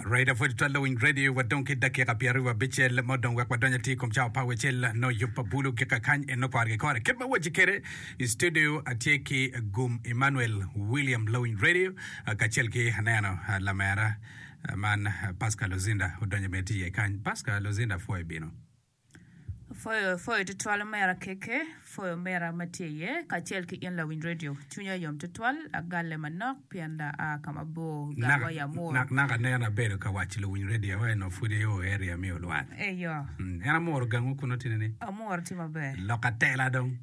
Raida pwod twal lawiny radio wa dong ki dakika pyer aryo abicel mo dong wek wadonyo atir kom cawa pa wecel no yub pa bulu gika kany en no kore ki kore kit ma waci kede i studio atye ki gum Emmanuel William lawiny radio kacel ki aneno lamera man Pascal Luzinda odonyo bene tye iye kany Pascal Luzinda pwoyo bino Pwoyo pwoyo tutwal omera KK pwoyo omera ma tye iye kacel ki in lawiny redio cwinya yom tutwal agalle manok pien da a ka mabor gang wa Yamur Nak nak aneno abedo ka waco luwiny redio wa eno pud i o area me olwar eyo Mm, en amuro gangwu kuno tini ni amuro tye maber lok atela dong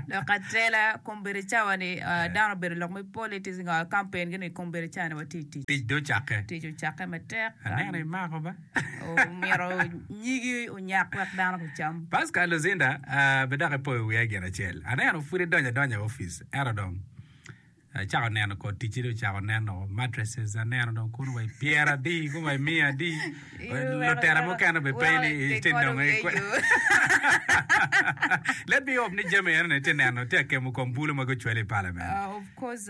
lok atela kombedi cawa ni ah, dano obedo lok me politics ngo kampen gini kombedi cawa ni watye i tic tic do cakke tic ocakke matek aneno imako ba omito nyigi onyak wek dano gucam. Pascal Luzinda, Be dok ipoyo wiya gin acel. Aneno pud idonyo adonya i opic, ento dong acako neno kor ticci dong ocako nen o, mattresses aneno dong kunu wa i pyera adi, kunu wa i miya adi. Lutera mukene be pe ni itye nongo i kwe. Let me hope ni jami eno ni itye neno, tye akemo kom bulu ma gucwalo i parliament. Of course.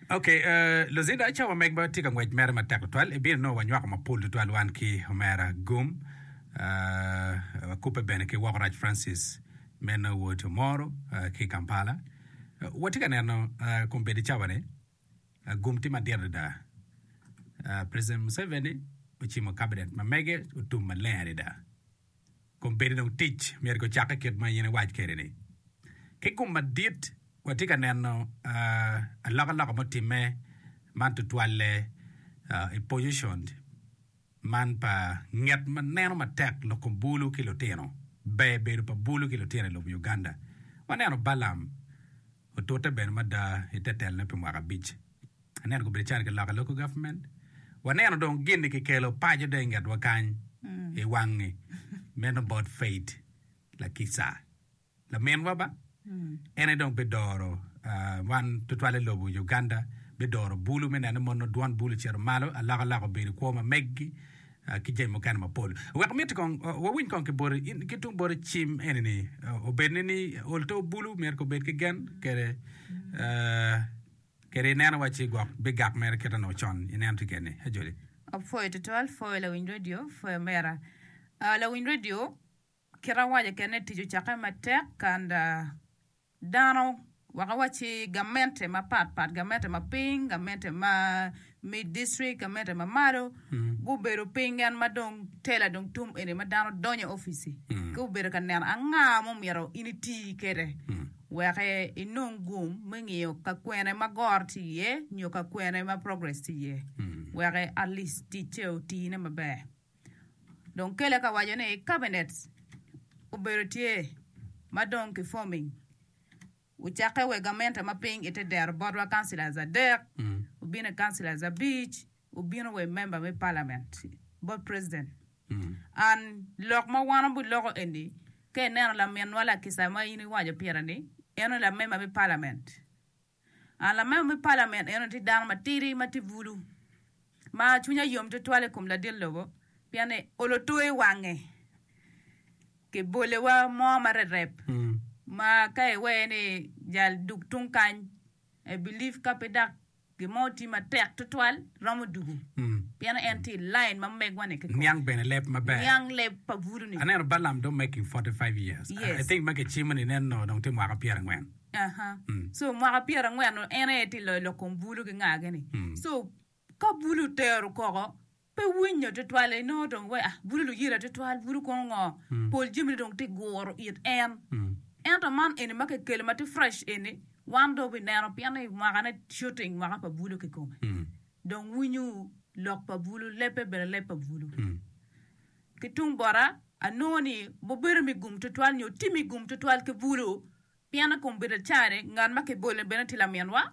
Ok, luzinda, cawa megwa tye ka ngwec mere matek tutwal. Ebino nongo wanywako mapol tutwal wan ki Omera Gum, wakubbe bene ki Wokorac Francis me Norwood Omoro ki i Kampala. Watye ka neno kombeddi cawa-ni, gum tye madit adada. President Museveni ocimo Cabinet ma mege otum maleng adada. Kun pire dong tic myero gucakke kit ma in iwac kwede-ni. Ki kom madit, watye ka neno alokaloka mutimme man tutwalle i pojicon man pa nget ma neno matek lok kom bulu ki lutino. Ber bedo pa bulu ki lutino i lobo Uganda. Waneno Balaam otute bene mada i te telone pi mwaka abic. Aneno kong bedo calo ki loko i local government. Waneno dong gin-ni ki kelo paco dong i ngetwa kany i wangi. Meno about Faith Lakisa. Laminwa ba, en aye dong bi doro wan tutwale lobo Uganda, bi doro bulu me neno ni mono dwon bulu ocito malo, alokaloka obedo i kwo ma meggi ki jami mukene mapol. Wek miti kong wawiny kong ki boti, in ki tung boti cim eni-ni obed ni ni olto bulu myero kong obed ki gen kede Kadi i neno wa ci gwok bi gak mere kit onongo con i neno tiket ni. Ajoli. Apwoyo tutwal pwoyo lawiny radio pwoyo omera lawiny radio kit awaco kene tic ocake matek and dano wek awaci gamente mapat pat gamente maping gamente ma me dictrik Kamete ma malo gubedo piny gen ma dong tela dong tum eni ma dano donyo i opici ki obedo ka neno anga ma omyero in iti kede wek inong gum me ngiyo ka kwene ma goro ti iye nyo ka kwene ma progress ti iye wek atlis ticce otine maber dong kele ka waco ni cabinet obedo tye ma dong ki forming Wucakke wek gamente ma piny i te dero botwa councillors adek wubine councillors abic wubino wa i member me parliament bot president and lok ma wan wabi loko eni ka i neno laminwa lakisa ma in iwaco pire ni en eni la member me parliament and la member me parliament eno tye dano ma tidi ma tye bulu ma cwinye yom twatwal i kom ladit lobo pien ni olo two i wange Kibolewa mo ma rerep ma ka iwee ni jal dug tung kany, I believe ka pe dok gin mo oti matek twatwal romo dugu pien en tye i line ma megwa ni kikome. Niang bene leb maber. Niang leb pa butu ni. Aneno Balaam dong making 45 years. Yes. I think ma kicimo ni nen noo dong tye mwaka pyera angwen. Aha. So mwaka pyera angwen en aye tye loyo lok kom bulu ki ngagi ni. So ka bulu tero koko Pe winyo twatwal en nongo dong wea bute luyira twatwal bute kono ngo pol jami ne dong tye guro it en ento man eni ma kikelo ma tye fresh eni wan dong wabi neno pien ni mwaka ne shooting mwaka pa bulu kikome dong winyo lok pa bulu lebbe bene leb pa bulu ki tung bota anongo ni mubedo me gum twatwal nyo tye me gum twatwal ki bulu pien ni kombedda cani ngat ma kibolo ni bene tye laminwa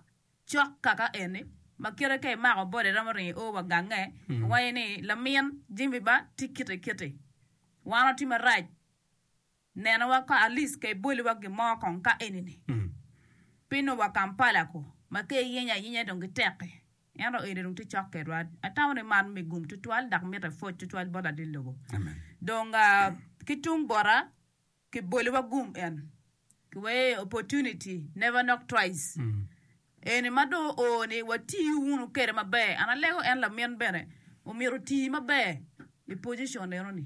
Cok kaka eni, ma kite ka imako boda iromo ringo io wa gange, iwaco ni, Lamin Jimmy ba tye kite kiti. Wan watye marac. Nenowa ka Alice ka iboliwa gin mo kong ka enini. Pingo wa Kampala ku, ma ka iyenyo ayenya dong gitek-ki. Ento eni dong tye cok kedwa. Atamo ni man me gum tutwal dok mite pwoc tutwal bot ladit lobo. Dong ki tung bota, ki boli wa gum en ki we opportunity never knock twice eni ma do o ni wa ti wunu kede ma ber an alego en lamin bene omito ti ma ber i position eno ni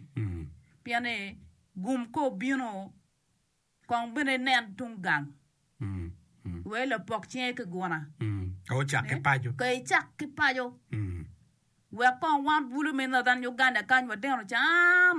pien ni gum ka obino kong bene nen tung gang we lapok cinge ki guna ka ocak ki paco ka icak ki paco wek kong wan bulu me northern Uganda kany wa tino can